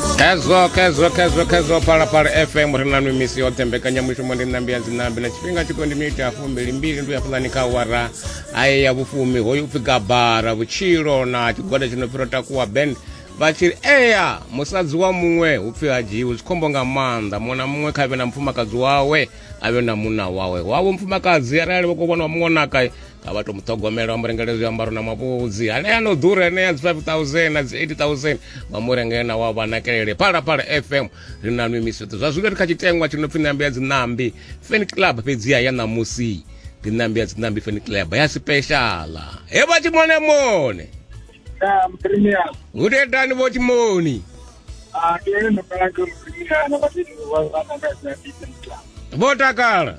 khezwo khezwo khezwo khezwo phalaphala fm ri na mimisi yoṱhe mbekanyamushumo ndi ṋambi ya dzinambi na tshifhinga tshiko ndi miniti ya fumbili mbili ndi uyafulani kha wara aye ya vhufumi hoyu upfi gabara vhutshilo na tshigwada tshi no pfiro takuwa band vha tshiri eya musadzi wa muṅwe hu pfi ha dzhiwi zwi khombo nga maanḓa muṅwe na muṅwe kha vhe na mufumakadzi wawe a vhe na munna wawe wavho mufumakadzi arali vho ko vhona wa muṅwe naka a vha to mu ṱhogomela vha mu rengela zwiambaro na mavhudzi anea no ḓura anea dzi 5000 na dzi 80000 vha mu rengela na wa vha nakelele phalaphala fm ri na nwi misweṱo zwa zwino ri kha tshitengwa tshi no pfi ṋambi ya dziṋambi fan club fhedziha ya ṋamusi ndi ṋambi ya dziṋambi fan club ya sipeshala he vha tshimonemone hudedani vho tshimoni ah, vho takala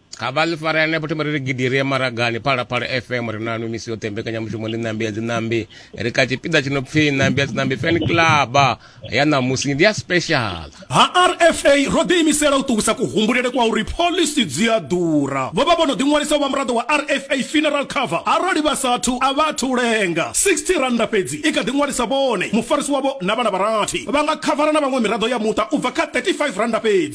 ha vha ḽi fara henefho thoma ri ri gidi ri ye maragani phalaphala fm ri nanu misi yoṱhe mbekanyamushumo ḽi ṋambi ya dziṋambi ri kha tshipiḓa tshi no pfhi ṋambi ya dziṋambi fan club ya ṋamusi ndi ya special ha rfa ro ḓiimisela u ṱuwisa kuhumbulele kwa uri phoḽisi dzi a ḓura vho vha vho no ḓiṅwalisa u vha muraḓo wa rfa funeral cover arali vha sathu a vha athu lenga 60 rannda fhedzi i kha ḓiṅwalisa vhone mufarisi wavho na vhana vharathi vha nga khavara na vhaṅwe miraḓo ya muṱa u bva kha 35 rannda fhedzi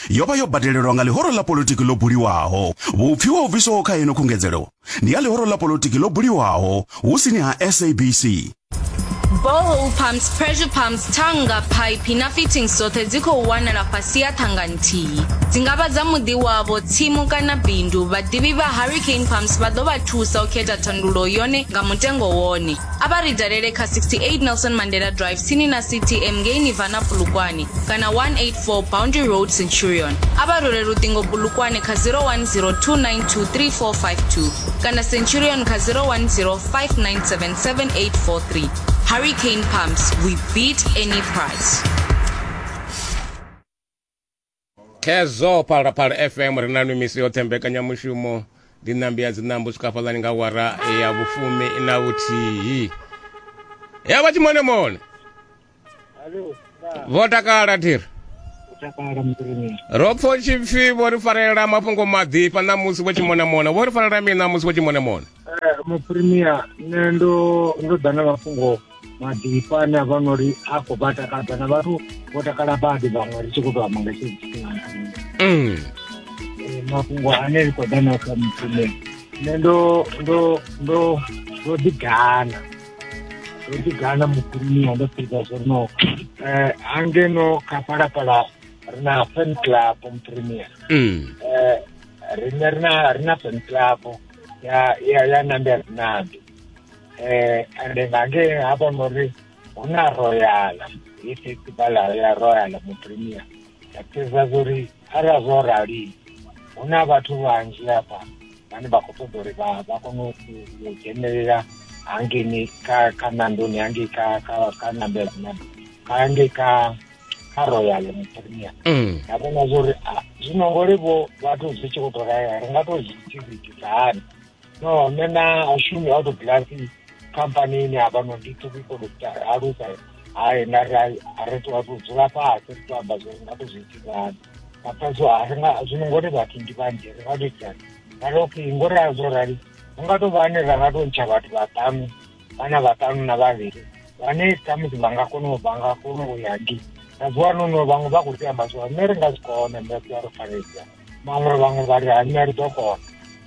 yo vha yo badelelwa nga ḽihoro ḽa politiki ḽo buliwaho. Vhupfi ho bviswaho kha ino khungedzelo ndi ya ḽihoro ḽa politiki ḽo buliwaho hu sini ha SABC. Borehole pumps, pressure pumps, thanga, phaiphi na fittings dzoṱhe dzi khou wanala fhasi ya thanga nthihi. Dzi nga vha dza muḓi wavho, tsimu kana bindu. Vhaḓivhi vha Hurricane Pumps vha ḓo vha thusa u khetha thandulo yone nga mutengo wone. A vha ri dalele kha 68 Nelson Mandela Drive tsini na CTM ngei Nirvana Polokwane kana 184 For Boundary Road Centurion, a vha rule luṱingo bulukwane kha 0102923452 kana Centurion kha 0105977843. Hurricane Pumps, we beat any price. khezwo phalaphala fm ri na mimisi yoṱhe mbekanyamushumo ndi ṋambi ya dziṋambo swika fhaḽani nga wara ya vhufumi na vhuthihi ya vha tshimonemone Alo, vha vho takala thiri takala muḓini. ro pfo tshipfi vho ri farelela mafhungo maḓifha na musi vho tshimonamona vho ri farelela mini na musi vho tshimonamona Eh, muprimier nṋe ndo ndo ḓa na mafhungo maḓifha ane a vha no ri a khou vha takadza na vhathu vho takala badi vhaṅwe ri tshi khou tou amba nga tshee tshifhinga Mm. Eh, mafhungo ane ri khou ḓa nao kha muprimier nṋe ndo ndo ndo ndo ḓi gana ndo ḓi gana muḓiniwa ndo fhedza zwo no um hangeno kha phalaphala ri na fan club muprimia um mm. eh, rine ri na ri na fan club ya ya ya nambe ri nambe um eh, ende nga nge ha vhona uri hu na royala i festivala ya royala muprimia ya fhedza zwo ri arali zwo rali hu na vhathu vhanzhi hafha vhane vha khou ṱoḓa uri vha vha kone u dzhenelela hangeni kha kha nandoni hangei kha kha kha nambela kha hangei kha kha royal premier mm. nda vhona zwo uri zwino ngori vho vhathu zwi tshi khou tou raya ri nga tou zwi tshivhitisa hani no nṋe na ashumi auto glasi khampanini hafhanoni ndi to people alusa hayi na ri a ri to to dzula fhasi ri to amba zwori nga to zwi itisani after so a ri nga zwino ngori vhathu ndi vhanzhi ri nga to itani ra ri okay ngori a zwo rali hu nga to vha ane ra nga to ntsha vhathu vhaṱanu vhana vhaṱanu na vhavhili vhane khamusi vha nga kona u vha nga kona u ya ndi na zwi wana no vhaṅwe vha khou tea amba zwo nṋe ri nga zwi kona nṋe ri a ri fanedza vhaṅwe vhaṅwe vha ri hanya ri ḓo kona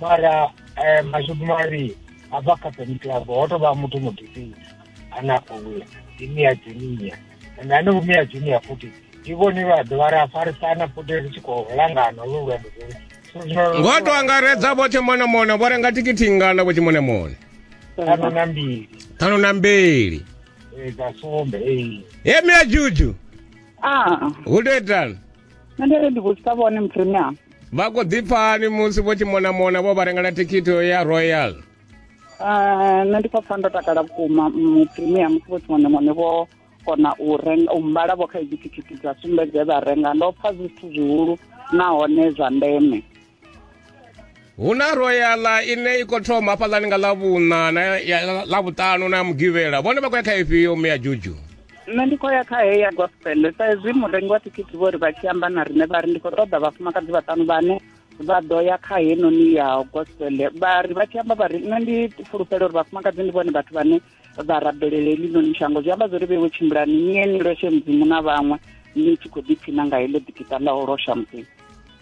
mara um mashudu mari a bva kha peni club ho tou vha muthu mudifini ane a khou wina ndi mia junior and ane vhumia junior futhi ndi vhone vha ḓovha ri a farisana futhi ri tshi khou langana lu lwendo lolu ngo to angaredza vho tshimonamona vho renga tikiti ngana vho tshimonamona ṱhanu na mbili ṱhanu na mbili dza sumbe ee he mia juju hu to itani nṋe ndi ri ndi vhudzisa vhone mupremium vha khou ḓipfani musi vho tshi monamona vho vha rengela thikhithi ya royal eh, nṋe ndi khou pfa ndo takala vhukuma mupremium musi vho tshi monamone vho kona u renga u mbala vho kha hedzi thikhithi dza sumbedze vha renga ndo pfa zwithu zwihulu nahone zwa ndeme hu na royala ine i khou thoma hafhaḽani nga ḽavhuṋa na ḽavhuṱanu na ya mugivhela vhone vha khou ya kha ifhio mme ya juju nṋe ndi khou ya kha heya gospel sa ezwi murengi wa thikhithi vho ri vha tshi amba na riṋe vha ri ndi khou ṱoḓa vhafumakadzi vhaṱanu vhane vha ḓo ya kha henoni ya gospel vha ri vha tshi amba vha ri nṋe ndi fulufhela uri vhafumakadzi ndi vhone vhathu vhane vha rabelele eḽinoni shango zwi amba zwori vhewe tshimbulani ni ye ni loshe mudzimu na vhaṅwe ni tshi khou ḓiphina nga heḽo ḓikita ḽa u losha mudzimu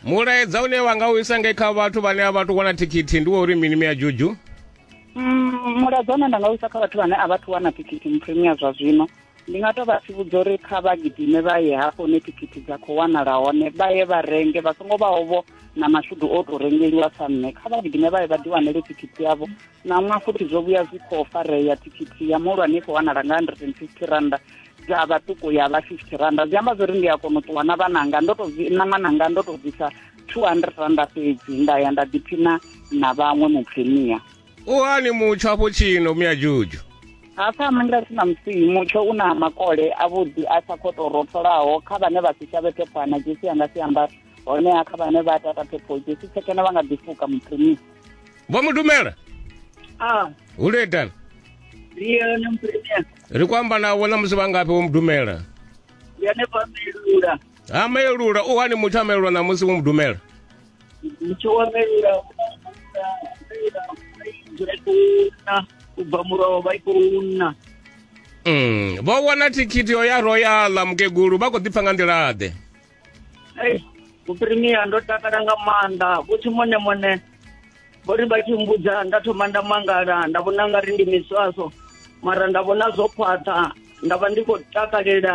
mulaedza une wa nga u isa nge kha vhathu vhane a vha tu wana thikhithi ndi wa uri mini mi ya juju mm, mulaedza une nda nga u isa kha vhathu vhane a vha thu wana thikhithi mupremia zwa zwino ndi nga tou vha tsivhudza uri kha vha gidime vha ye hafho hune thikhithi dza khou wanala hone vha ye vha renge vha songo vhaovho na mashudu o tou rengeliwa sa nṋe kha vha gidime vha ye vha ḓiwanele thikhithi yavho ṋaṅwa futhi zwo vhuya zwi khou farea thikhithi ya muhulwane i khou wanala nga 150 randa dza vhaṱuku ya vha 50 randa zwi amba zwo ri ndi a kona u ṱuwa na vhananga ndo to na ṅwananga ndo to bvisa 200 randa fhedzi nda ya nda ḓiphina na vhaṅwe mupfenia u hani mutsho afho tshino miyajuju hafha manga si na musihi mutsho u na makole avhuḓi a sa khou tou rotholaho kha vhane vha si shavhe phephwana dzesi anga si ambara honeha kha vhane vha tata phepho jesu tshekena vha nga ḓifuka muphrimisi vho mu dumela a hu le eḓana liyone muphrimisi ri ku amba nawo na musi vha ngafhi vho mu dumela yone vha melula ha melula u hani muthu a melula na musi vho mu dumela muthu wa melula dzula i khou na u bva muroho vha i khou na mm. vho wana thikhithi yo ya royala mukegulu vha khou ḓipfa nga nḓila ḓe Hey, muprimiya ndo takala nga maanḓa vhuthi mone mone vho ri vha tshi mbudza nda thoma nda mangala nda vhona nga ri ndi miswaso mara nda vhona zwo khwaṱha nda vha ndi khou takalela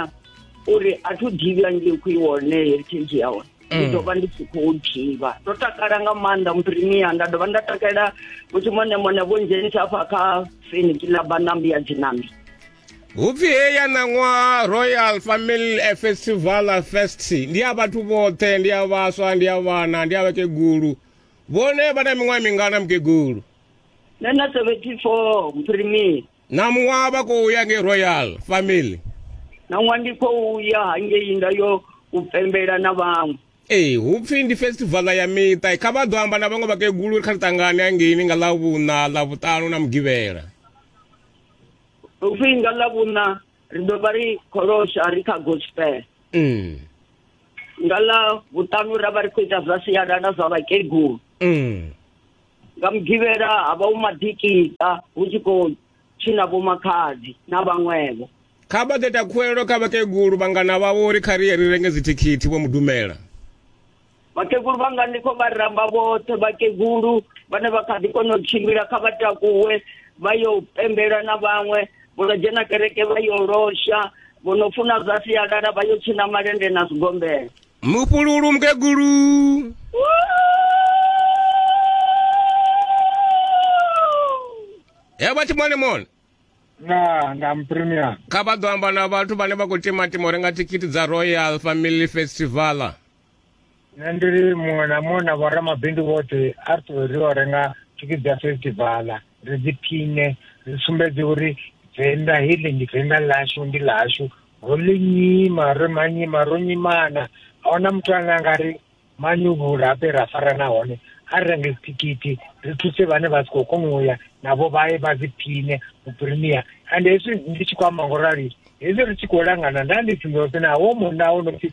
uri a thu dzhivha ngei khou iwone heritage ya hone ndi mm. ḓo vha ndi tshi khou dzhivha ndo takala nga maanḓa muprimiya nda dovha nda takalela vhuthi mone mone vho ndzhenisa afha kha feniki ḽa banambi ya dzinambi hupfi he ya ṋaṅwaha royal family festival fest ndi ya vhathu vhoṱhe ndi ya vhaswa ndi ya vhana ndi ya vhakegulu vhone vha na miṅwaha mingana mukegulu nṋe na 74 mphirimii na muṅwaha vha khou ya ngei royal family na ṅwaha ndi khou ya hangei nda yo u pembela na vhaṅwe ee hu pfi ndi festivala ya miṱa kha vha ḓo amba na vhaṅwe vhakegulu ri kha ri ṱangane hangeini nga ḽa vhuṋa ḽa vhuṱanu na mugivhela Ufhinga la vhuna ri do vha ri kholosha ri kha gospel. Mm. Nga la vhutanu ra vha ri khou ita zwa sialala zwa vhakegulu. Mm. Nga mugivhela ha vha u madikita hu tshi khou tshina vho makhadzi na vhaṅwevho. Kha vha ḓeta khuwelelo kha vhakegulu vhangana vhavho uri kha ri ye ri renge dzithikhithi vho mudumela. vhakegulu vhanga ndi khou vha ramba vhoṱhe vhakegulu vhane vha kha ḓi kona u tshimbila kha vha takuwe vha yo pembela na vhaṅwe vho no dzhena kereke vha yo losha vho no funa zwa sialala vha yo tshina malende na zwigombela mupululu mukegulu he vha tshi mone mone na nga mpremia kha vha ḓo amba na vhathu vhane vha khou timatima u renga thikhithi dza royal family festivala nṋe ndi ri muṅwe na muṅwe na vhoramabindu vhoṱhe a ri ṱuwe ri o renga thikhithi dza festivala ri dzi phine ri sumbedze uri venḓa heḽi ndi venḓa ḽashu ndi ḽashu ro ḽi nyima ro manyima ro nyimana a huna muthu ane a nga ri manyuvhula ape ra farana hone a ri renge dzithikhithi ri thuse vhane vha si khou kona u ya navho vha ye vha dzi phine u premier and hezwi ndi tshi khou amba ngo rali hezwi ri tshi khou langana nda ndi tsindosi naho munna wo no pfi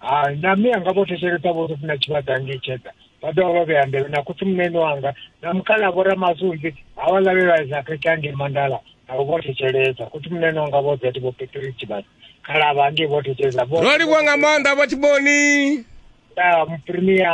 hai na mme anga vho thetshelesa vho ri funa tshivhada nge tsheda vha dovha vha vhea nḓevhe na khotsi munene wanga na mukhala vho ramasunzi ha vha lavhelwaisa khekhe ange mandala navho vho thetshelesa khotsi munene wanga vho zati vho peteri tshivhada khalavha ange vho thetshelesa ro livhuwa nga maanḓa vha tshiboni ya muprimia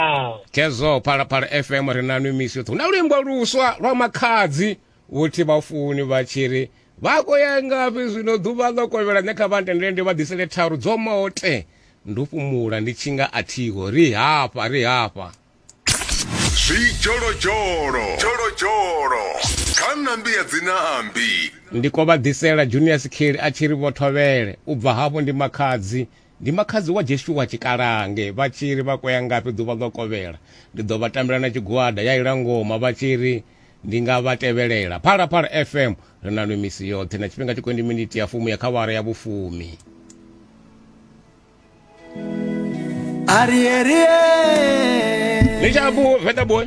kezo phalaphala fm ri na nwi misi yoṱhe hu na luimbo luswa lwa makhadzi uthi vhafuni vha tshi ri vha khou ya ngafhi zwino ḓuvha ḽo kovhela nṋe kha vha ntendele ndi vha ḓisele tharu dzo mote ndo fhumula ndi tshi nga a thiho ri hafha ri hafha zwidzholodzholo dzholodzholo kha nambi ya dzinambi ndi ko vha ḓisela junior sikheli a tshi ri vho thovhele u bva hafho ndi makhadzi Ndi makhadzi wa Jeshua Tshikalange vha tshi ri vha kwea ngafhi ḓuvha ḽo kovhela. Ndi ḓo vha tambela na tshigwada ya ila ngoma vha tshi ri ndi nga vha tevhelela. Phalaphala FM ri na nwi misi yoṱhe na tshifhinga tshi kwendi miniti ya fumi ya kha awara ya vhufumi. Arie, arie. Ni tsha ku Vedaboy?